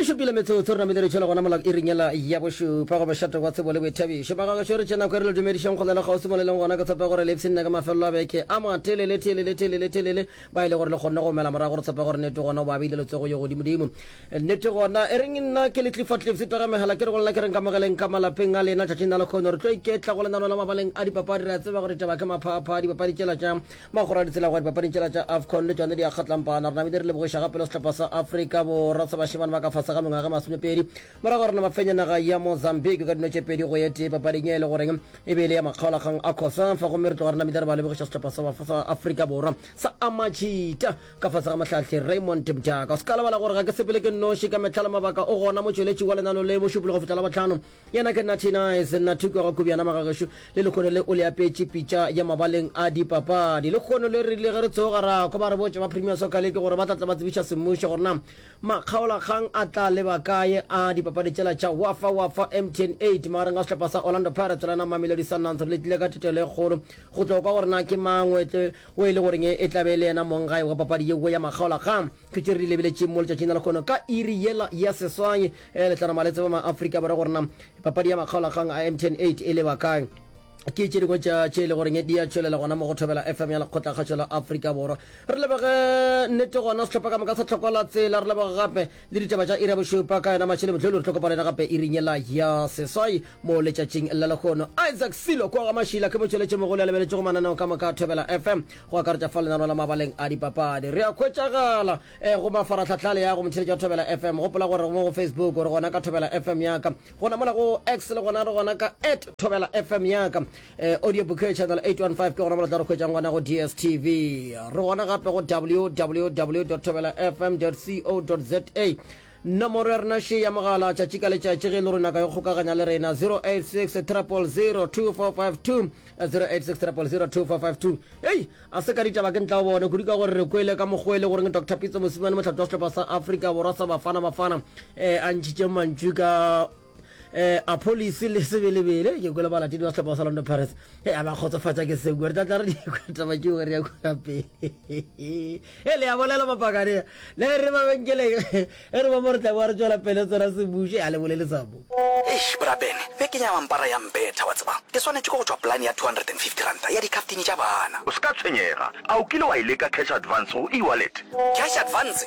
e šupile metsotso rena mile re tšhela gona molao e ringela ya bošupa go bošate wa tsebo le boithabišo magagašo re tšena kwere le dumedišang go na le kgausimo le leng gona ke tshepe gore lepsi nna ka mafelelo a beke a matelele telele telele telele ba e le gore le kgonne go mela morago re tshepe gore nete gona o ba beile letsogo yo godimodimo nete gona e reng nna ke le tlifatlifsi taga megala ke re go lena ke reng ka mogeleng ka malapeng a lena tšatšing na le kgono re tlo iketla go lenano la mabaleng a dipapadi re a tseba gore taba ke maphapha dipapadi tšela tša Magora a ditsela go ya dipapading tšela tša Afcon le tšone di a kgatlampana. Re namile re lebogiša ga pelo sehlopha sa Afrika Borwa sa bašemane ba ka fase ga mengwaga masomepedi morago ga rena ba fenye naga ya Mozambique ka dino tše pedi go ye tee papading e le goreng e be e le ya makgaolakgang a Cosafa gomme re tloga re namile re ba lebogiša sehlopha sa sa Afrika Borwa sa Amachita ka fase ga mohlahli Raymond Mjaka. O se ka lebala gore ga ke sepele ke nnoši ka mehla le mabaka o gona motšweletši wa lenano le mošupologo fihla la bohlano. Yena ke Natty Nice, Natty kwa Gakobjana magagešo, le lekgono le o le apetše pitša ya mabaleng a dipapadi. Lekgono le rile ge re tsoga ra kwa ba re botša ba Premier Soccer League gore ba tla tla ba tsebiša semmušo gore na makgaolakgang a tla leba kaye a dipapadi tšela tša Wafa Wafa Mtn 8 magareng ga sehlopha sa Orlando Pirates le na Mamelodi Sundowns. Re letlile ka thetelo e kgolo go tlo kwa gore na ke mang o etle o e le goreng e e tla be e le yena monggae wa papadi yeo ya makgaolakgang. Thutše re di lebeletše mo letšatšing la lekgono ka iri yela ya seswai. e le tlanama le tseba ma Africa ba re gore na papadi ya makgaolakgang a M10 8 e le ba kae ke tše dingwe tša tše e le goreng di a tšwelela gona mo go thobela fm ya lekgotlakgatšo la aforika borwa re lebege nnete gona setlhopha ka moka sa tlhokola tsela re lebege gape le ditaba tša ira bošupa ka yona matšhele botlholo re tlhokopana yena gape e rinyela ya seswai mo letšatšing la lekgono isaac silo kwa ga mašila ke motšweletše mogolo ya lebeletšego mananeo ka moka thobela fm go akaretša fa lenaneo la mabaleng a dipapadi re a khwetšagala E go mafaratlhatlha le ya go motšheletša Thobela FM. Gopola gore mo go Facebook o re gona ka Thobela FM ya ka. Gona mola go X le gona re gona ka at Thobela FM ya ka. E, audio book channel 815 ke gona mola tla re khwetšang gona go DSTV. Re gona gape go www.thobelafm.co.za. Nomoro ya rena še ya mogala tšatši ka letšatši ge e le rona ka yo kgokaganya le rena 086 000 2452 086 000 2452 Hei, a se ka ditaba ke ntla o bone kudu ka gore re kwele ka mokgwa e le goreng Dr Pitso Mosimane mohlato wa sehlopha sa Afrika Borwa sa Bafana Bafana eh a ntšhitše mantšu ka eh a police le sebelebele ke kwele balatedi ba sehlopha sa londo paris e a ba kgotsofatsa ke seo gore tlatla re dikwataba ke gore ya kona pele e le ya bolela mapakane le re mabenkeleng e re ba mo re tla boa re tswela pele tsona sebuše a le bolele sabo eish brabene be ke nyama mpara ya mbetha wa tseba ke swanetše ke go tšwa polane ya 250 ranta ya dikhaftini tša bana o se ka tshwenyega a o kile wa e leka cash advance go e-wallet cash advance